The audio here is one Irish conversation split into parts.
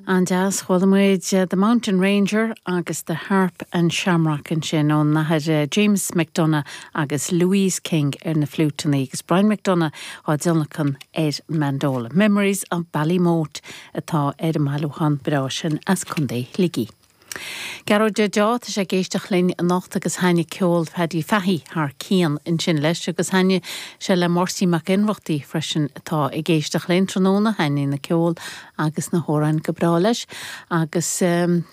An-deas. Chuala muid The Mountain Ranger agus The Harp and Shamrock ansin ón nAthair James McDonagh agus Louise King ar na fliúiteanna agus Brian McDonagh á dtionlacan ar an mandola. Memories of Ballymote atá ar an mbailiúchán breá sin as Contae Shligigh. Gearóid Dheaideo, tá sé ag éisteacht linn anocht agus thaitnigh ceol Phaddy Fahey thar cionn ansin leis agus thaitnigh sé le Máirtín Mac Ionnrachtaigh freisin atá ag éisteacht linn tráthnóna, thaitnigh an ceol agus na hamhráin go breá leis agus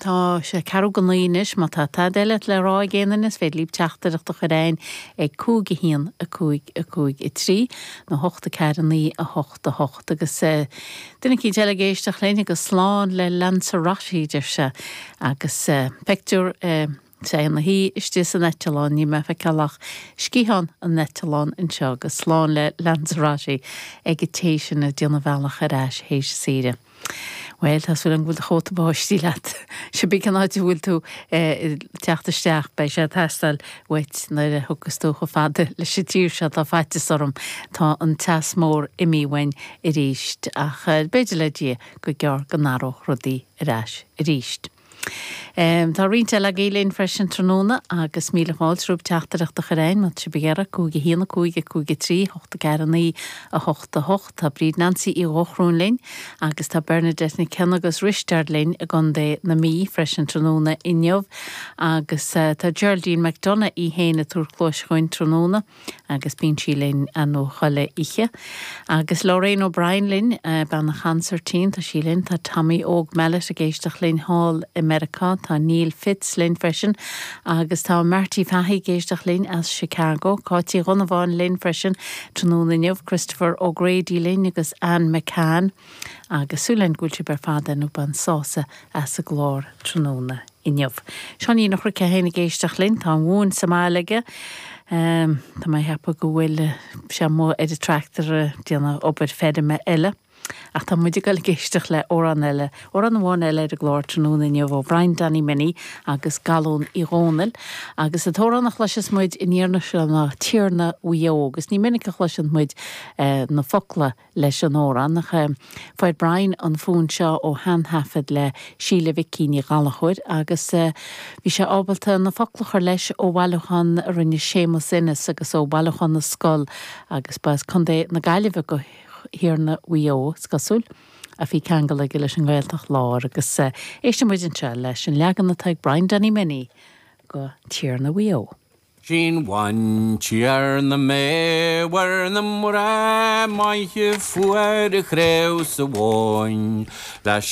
tá sé ceathrú go naoi anois, má tá tada eile le rá ag éinne is féidir libh teachtaireacht a chur chugainn ag 5 1 5 5 3 nó 8 4 9 8 8 agus. Duine eicínt eile ag éisteacht linn agus slán le Lanzarote, deir sé, agus pictiúr is é ina shuí istigh san eitleán. Níl mé ag feiceáil ach sciathán an eitleáin anseo. Agus slán le Lanzarote ag an té sin ag déanamh a bhealach ar ais théis saoire. Bhuel, tá súil agam go bhfuil do chóta báistí leat. Cibé cén áit a bhfuil tú ag teacht isteach, beidh sé ag teastáil uait nuair a thiocfas tú chomh fada leis an tír seo, tá faitios orm, tá an teas mór imithe uainn arís, ach b'fhéidir le Dia go gearr go n-athródh rudaí ar ais arís. Tá roinnt eile agaibh linn freisin tráthnóna, agus míle fáilte romhaibh teachtaireacht a chur chugainn, má tá sibh ag iarraidh, cúig a haon, a cúig a cúig a trí, hocht a ceathair a naoi, 8 8 Tá Bríd Nancy Uí Dhochrúin linn agus tá Bernadette Nic Cionnaith agus Risteard linn i gContae na Mí freisin tráthnóna inniu agus tá Geraldine McDonagh í fhéin ag tabhairt cluais chugainn tráthnóna agus bíonn sí linn an chuile oíche agus Lorraine O'Brien linn, bean an chonsairtín, tá sí linn. Tá Tommy Óg Mellett ag éisteacht linn thall i Meiriceá, tá Neil Fitz linn freisin agus tá Marty Fahy ag éisteacht linn as Chicago. Cáit Uí Dhonnabháin linn freisin Tráthnóna inniu, Christopher O'Grady linn agus Anne McCann agus súil againn go bhfuil sibh ar fad ar ndóigh ag baint sásamh as an gclár tráthnóna inniu. Seáinín Phádraic é fhéin ag éisteacht linn, tá an mhóin sa mbaile aige. Tá mé ag ceapadh go bhfuil sé amuigh ar an tractor ag déanamh obair feirme eile. Ach tá muid ag dul ag éisteacht le amhrán eile, amhrán amháin eile ar an gclár tráthnóna inniu ó Bhrian Danny Minnie agus Galún Uí Dhónaill. Agus an t-amhrán a chloiseas muid an iarraidh seo ná 'Tiarna Mhaigh Eo'. Agus ní minic a chloiseann muid na focla leis an amhrán ach fuair Brian an fonn seo ó shean-thaifead le Síle Mhicí Ní Ghallchóir agus bhí sé ábalta na focla a chur leis ó bhailiúchán a rinne Séamus Ennis agus ó Bhailiúchán na Scol agus ba as Contae na Gaillimhe go Thiarna Mhaigh Eo, is cosúil, ach bhí ceangal aige leis an nGaeltacht Lár agus éisteann muid anseo leis an leagan atá ag Brian Danny Minnie de Tiarna Mhaigh Eo. Is í bean Tiarna Mhaigh Eo barr na mná maithe fuair craobh na háille